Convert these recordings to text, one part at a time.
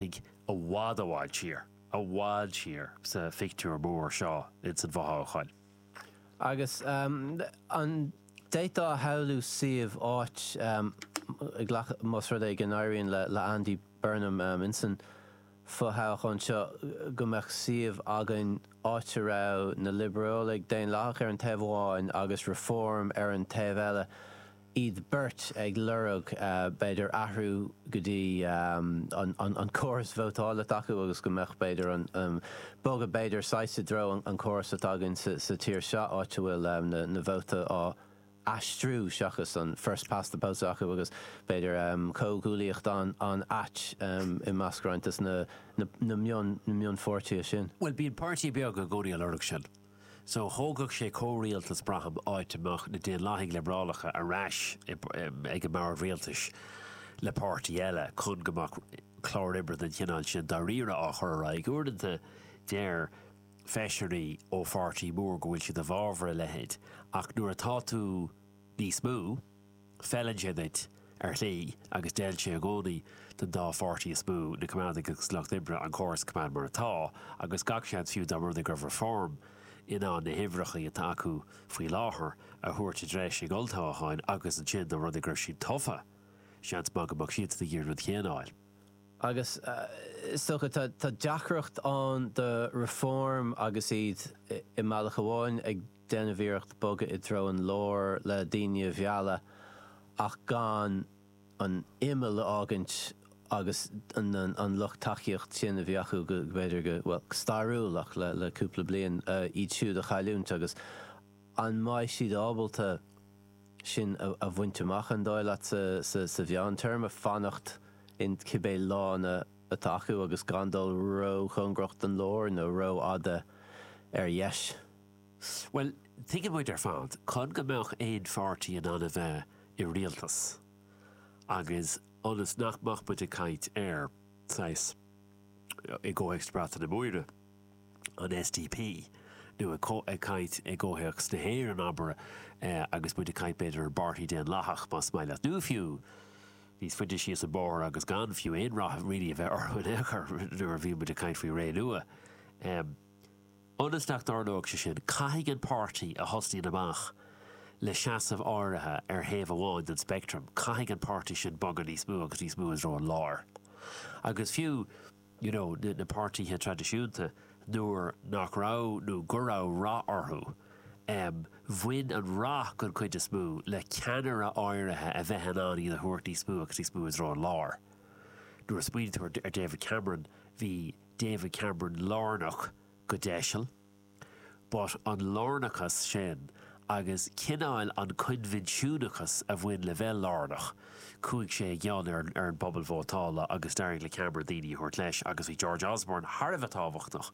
ag i bhfad i bhfad siar, i bhfad siar sa phictiúr mór seo ins an bhfothoghchán. Agus an d'fhéadfá a shamhlú suíomh, áit, más rud é go n-éiríonn le Andy Burnham ins an bhfothoghchán seo, go mbeadh suíomh againn áit a raibh na Liobrálaigh Daonlathacha ar an taobh amháin agus Reform ar an taobh eile, iad beirt ag lorg, b'fhéidir, athrú go dtí an córas vótáil atá acu agus go mbeadh, b'fhéidir, an bogadh, b'fhéidir, saghas i dtreo an córas atá againn sa tír seo, áit a bhfuil na vóta á aistriú seachas an first past the post a bheith acu agus, b'fhéidir, comhghuaillíocht an-ait i measc roinnt de na mionpháirtithe sin. Bhuel, bíonn páirtí beaga i gcónaí á lorg sin. So, thógfadh sé comhrialtas, braithim, áit a mbeadh na Daonlathaigh Liobrálacha ar ais ag an mbord rialtais le páirtí eile, chun go mbeadh clár oibre den chineál sin dáiríre á chur ar aghaidh. Uaireanta, deir feisirí ó pháirtí mór go bhfuil siad i bhfabhar a leithéid, ach nuair atá tú níos mó, Feileann sé duit, ar shlí, agus d'fheil sé i gcónaí don dá pháirtí is mó, na Coimeádaigh agus Lucht Oibre, an córas a choimeád mar atá, agus gach seans fiú dá mba rud é go raibh Reform in ann na huimhreacha atá acu faoi láthair a thabhairt i dtreis ag olltoghchán agus ansin dá mba rud é go raibh siad tofa, seans maith go mbeadh siadsan ag iarraidh an rud chéanna a fháil. Agus is dócha, tá deacracht ann do Reform agus iad i mbealach amháin ag. déanamh iarracht bogadh i dtreo an lár le daoine a mhealladh ach gan an imeall a fhágaint agus an lucht tacaíocht sin a bhí acu go, b'fhéidir go, bhuel, go stairiúil ach le cúpla bliain, iad siúd a chailliúint agus an mbeidh siad ábalta sin a bhaint amach, an dóigh leat, sa mheántéarma, fanacht in cibé lána atá acu agus gan dul róchóngarach don lár nó rófhada ar dheis? Bhuel, tuigeann muid ar fad, chun go mbeadh aon pháirtí in ann a bheith i rialtas, agus ionas nach mbeadh muid ag caint ar, saghas, i gcomhthéacs na Breataine Móire, an SDP, nó ag caint i gcomhthéacs na hÉireann, abair, agus muid ag caint, b'fhéidir, ar an bPáirtí Daonlathach, más maith leat, nó fiú, níos faide síos an bóthar agus gan fiú aon rath riamh a bheith orthu in aon chor, nuair a bhíonn muid ag caint faoi Renua. Ionas nach dtarlóidh sé sin, caithfidh an páirtí a thosnaíonn amach le seasamh áirithe ar thaobh amháin den speictream, caithfidh an páirtí sin bogadh níos mó agus níos mó i dtreo an láir. Agus fiú, you know, na, na páirtíthe traidisiúnta, nuair nach raibh, nó go raibh rath orthu, em, bhain an rath, den chuid is mó, le ceannaire áirithe a bheith in ann iad a thabhairt níos mó agus níos mó i dtreo an láir. Nuair a smaoiníonn tú ar, ar David Cameron, bhí. David Cameron lárnach go deiseal, but an lárnachas sin agus cineál an coinbhinsiúnachas a bhain le bheith lárnach, chuaigh sé i gcion ar an ar an bpobal vótála agus d'éirigh le Cameron daoine a thabhairt leis agus bhí George Osborne thar a bheith tábhachtach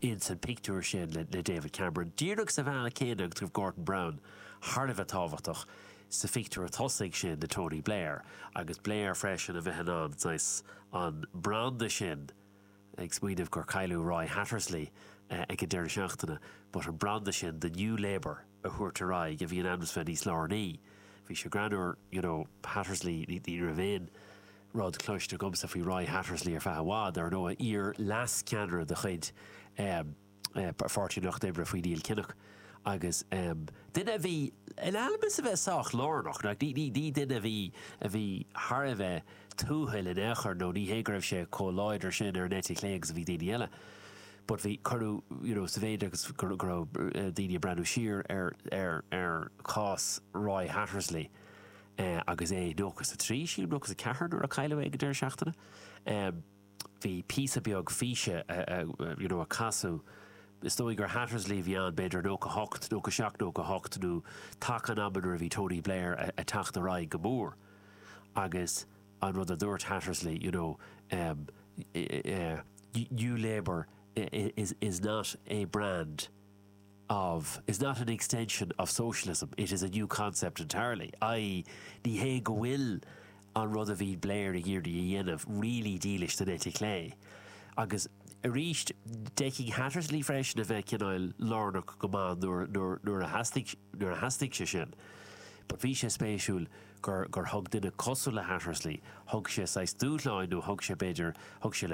ins an pictiúr sin le David Cameron díreach sa bhealach céanna agus go raibh Gordon Brown thar a bheith tábhachtach sa phictiúr tosaigh sin de Tony Blair, agus Blair freisin a bheith in ann saghas an branda sin, ag smaoineamh gur cailleadh Roy Hattersley ag an deireadh seachtaine, but an branda sin de New Labour a thabhairt ar aghaidh a bhí in ainm is a bheith níos lárnaí. Bhí sé greannúr, you know, Hattersley, ní raibh aon rud cloiste agamsa faoi Roy Hattersley ar feadh i bhfad, ar ndóigh, iar-leascheannaire de chuid, eh, Pháirtí an Lucht Oibre faoi Neil Kinnock agus duine a bhí in ainm is a bheith sách lárnach, ní duine a bhí thar a bheith tuathail in aon chor nó ní hé go raibh sé chomh láidir sin ar an eite chlé agus a bhí daoine eile but bhí, cuireadh, you know, sa mhéid agus go raibh daoine ag breathnú siar ar chás Roy Hattersley agus é nócha a trí, sílim, nócha a ceathair nuair a cailleadh é ag an deireadh seachtaine. bhí píosa beag físe you know a casadh, is dóigh gur Hattersley a bhí ann, b'fhéidir nócha hocht, nócha seacht nó nócha hocht nó taca an ama nuair a bhí Tony Blair a' teacht ar aghaidh go mór agus an rud a dúirt Hattersley you know ehm yeah, New Labour is is not a brand of, is not an extension of socialism, it is a new concept entirely', i.e. ní hé go bhfuil an rud a bhí Blair ag iarraidh a dhéanamh really dílis don eite chlé. Agus arís, d'fheicfeadh Hattersley freisin a bheith cineál lárnach go maith nuair nuair a theastaigh nuair a theastaigh sé sin. But bhí sé spéisiúil gur gur thug duine cosúil le Hattersley, thug sé saghas dúshlán nó thug sé b'fhéidir, thug sé le.